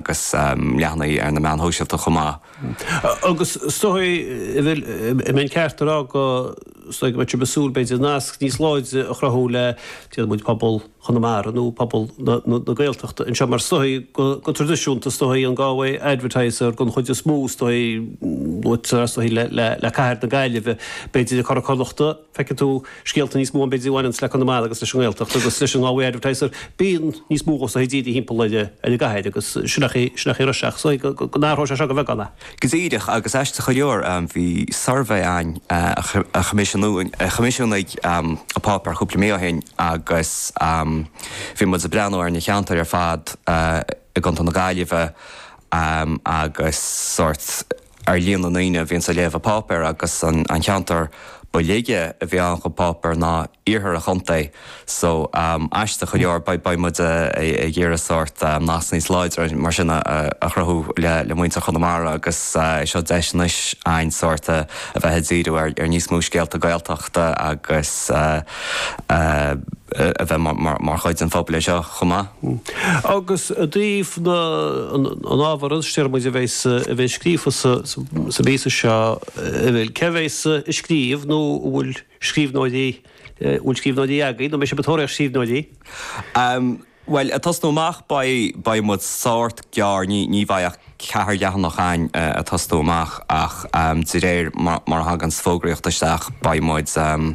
agus leathanaigh ar na meáin shóisialta chomh maith. Agus is dóigh, bhfuil an ceart a rá go, is dóigh go mbeadh sibh ag súil b'fhéidir, nasc níos láidre a chruthú le, déarfaidh muid, pobal Chonamara nó pobal na Gaeltachta anseo, mar is dóigh go traidisiúnta, is dóigh, an Galway Advertiser den chuid is mó, is dóigh, luaitear, is dóigh, le cathair na Gaillimhe, b'fhéidir, leis an gCuradh Connachtach. feicfidh tú scéalta níos mó ann b'fhéidir a bhaineanns le Conamara agus leis an nGaeltacht agus leis an Galway Advertiser, bíonn níos mó fócas timpeall ar an gcathair agus sin ach is dóigh so go n-athróidh sé seo de bheagán. Go díreach, agus aisteach go leor, bhí suirbhé ann a choimisiúnaigh a choimisiúnaigh an páipéar cúpla mí ó shin agus bhí muid ag breathnú ar na ceantair ar fad i gContae na Gaillimhe agus sórt ar líon na ndaoine a bhíonn ag léamh an pháipéir agus an ceantar ba laige a bhí ann don pháipéar ná iarthar an chontae so aisteach go leor beidh muid ag iarraidh sórt nasc níos láidre mar sin a chruthú le muintir Chonamara agus seo deis anois a'ainn sórt a bheith ag díriú ar níos mó scéalta Gaeltachta agus a bheith mar chuid den phobal anseo chomh maith. Agus i dtaobh an ábhair ansin déarfaidh muid a bheidh scríofa sa míosachán seo bhfuil, cé a bheidh ag scríobh nó an bhfuil scríbhneoirí, an bhfuil scríbhneoirí agaibh nó an mbeidh sibh ag tóraíocht scríbhneoirí? Bhuel, ag tosnú amach beidh muid sórt gearr, ní bheidh ach ceithre leathanach ann ag tosnú amach ach de réir mar a thagann an fhógraíocht isteach beidh muid ag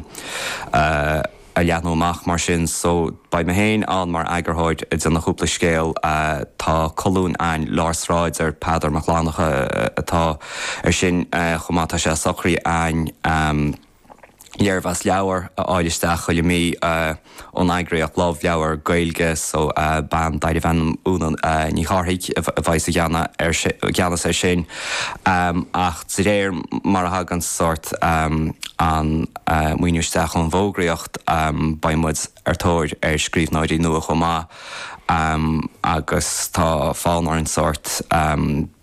leathnú amach mar sin so beidh mé féin ann mar eagarthóir ag déanamh cúpla scéal, tá colún ann Lár Sráide ar Peadar Mac Fhlannchadha atá ar sin chomh maith, tá sé socraithe againn. léirmheas leabhar a fháil isteach chuile mí ón eagraíocht Love Leabhar Gaeilge. So, bean darbh ainm Úna Ní Chárthaigh a bheidh i gceannas air sin ach de réir mar a thagann sórt an maoiniú isteach ón bhfógraíocht beidh muid ar thóir scríbhneoirí nua chomh maith agus tá fonn orainn sórt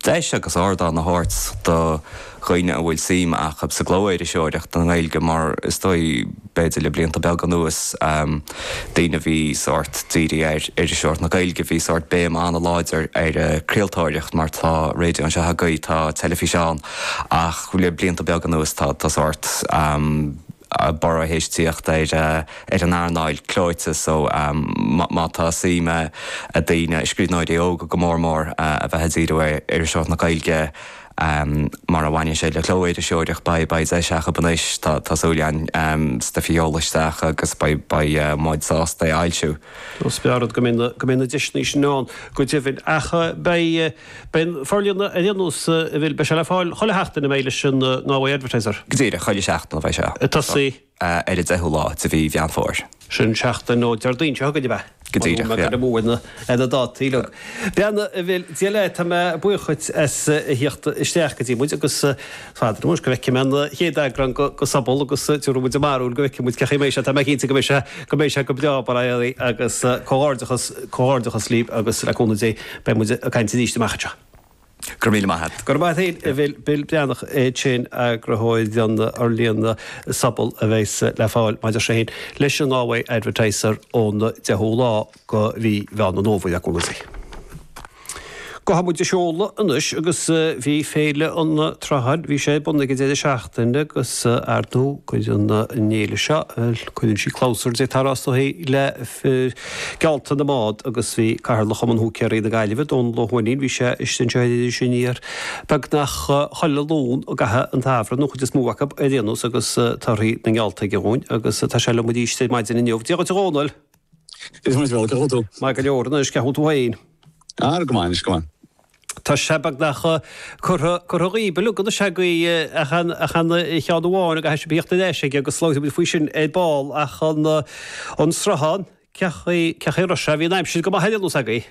deis agus ardán a thabhairt do dhaoine a bhfuil suim acu sa gclóiriseoireacht i nGaeilge mar is dóigh, b'fhéidir le blianta beaga anuas, daoine a bhí sórt dírithe ar iriseoireacht na Gaeilge, bhí sórt béim an-láidir ar an gcraoltóireacht mar tá raidió anseo agaibh, tá teilifís ann ach le blianta beaga anuas tá sórt. borradh théis teacht ar an earnáil clóite so má tá suim ag daoine, scríbhneoirí óga go mór mór, a bheith ag díriú ar iriseoireacht na Gaeilge mar a bhaineann sé le cló-iriseoireacht, beidh deis acu anois, tá súil agam, stuif a sheoladh isteach agus beidh muid sásta é a fhoilsiú. Is breá an rud go mbeidh na deiseanna sin ann go deimhin ach beidh. Beidh an forlíonadh ar aon nós, a Bhill, beidh sé le fáil chuile sheachtain an mbeidh leis an nGalway Advertiser. Go díreach, chuile sheachtain a bheidh sé. Ag tosú. ar an 10ú lá de mhí Mheán Fómhair. Sin seachtain ó Déardaoin seo chugainn, ab ea? Go díreach, yeah. Mura bhfuil mé ag goil amú ar na dátaí uilig. Bhuel, a Bhill, Dia leat, tá mé buíoch dhuit as a theacht isteach go dtí muid agus. Fada liom anois go bhfeicfidh mé an chéad eagrán de Sobal agus tiúrfaidh muid ár mbarúil go bhfeicfidh muid cén chaoi a mbeidh sé, tá mé cinnte go mbeidh sé, go mbeidh sé go breá, Barra Éalaí agus comhghairdeachas, comhghairdeachas libh agus le cúnamh Dé beidh muid ag caint arís amach anseo. Go raibh míle maith a't. Go raibh maith a't féin, Bill Breathnach é sin, eagrathóir den fhorlíonadh Sobal a bheas le fáil, mar a deir sé féin, leis an Galway Advertiser ón 10ú lá. de mhí Mheán an Fhómhair i gcónaí. Gabhfaidh muid ag seoladh anois agus bhí Féile an tSrutháin, bhí sé ar bun ag an deireadh seachtaine agus ar ndóigh cuireann an fhéile seo, bhuel, cuireann sí clabhsúr déarfá is dóigh le geallta na mbád agus bhí Cathaoirleach Chumann Húicéaraí na Gaillimhe, Dónall Ó hUaithnín, bhí sé istigh anseo ar Iris Aniar beagnach chuile Luan i gcaitheamh an tsamhraidh, nó chuid is mó acu ar aon nós agus torthaí na ngeallta aige dhúinn agus tá sé liom arís ar maidin inniu. Dia dhuit a Dhónaill! Cén chaoi a bhfuil tú? Maith go leor, anois, cén chaoi a bhfuil tú féin? Ara, go maith, anois, go maith. Tá sé beagnach curtha, curtha dhíbh, uilig, anois, agaibh, ach an, ach aon cheann amháin, agus tá sé ag tíocht duine eisithe aige agus labhróidh muid faoi sin ar ball, ach an, an sruthán, cé, cén chaoi a raibh sé, bhí an aimsir go maith ar aon nós agaibh.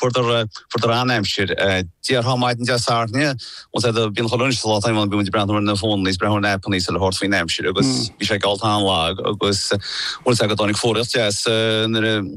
Fuaireadar an-aimsir. Déarfá maidin Dé Sathairn, once I had a, bíonn chuile dhuine sa lá atá inniu ann, bíonn muid ag breathnú ar na fónanna is breathnú ar na aipeanna is eile thabhairt faoin aimsir agus bhí sé geallta an-lag agus an bhfuil a fhios a'd go dtáinig fuaraíocht deas nuair a